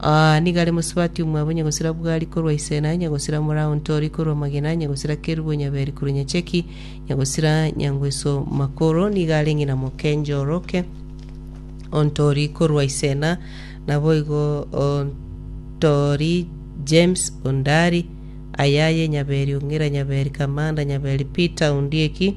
Aa, nigo are mosubati omwabo, nyagosira Bugari korwa Isena, nyagosira Morao Ntori korwa Magena, nyagosira Kerubo Nyaberi korwa Nyacheki, nyagosira Nyangweso Makoro, nigo are ng'ina mokencha oroke o Ntori korwa Isena, naboigo o Ntori James Ondari, Ayaye Nyaberi Ong'ira Nyaberi Kamanda Nyaberi Peter Ondieki,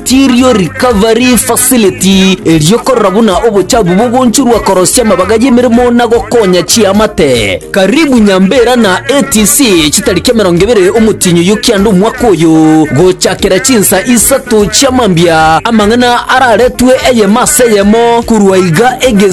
Chirio Recovery Facility eriokorora buna obochabu bogonchurwa korosia amabaga y'emeremo na gokonya chiamate. Karibu Nyambera na ATC chitariki emerongo ebere omotienyi oyio kianda omwaka oyo gochakera chinsa isato chiamambia amang'ana araretwe eyemo ase eyemo korwa iga egesi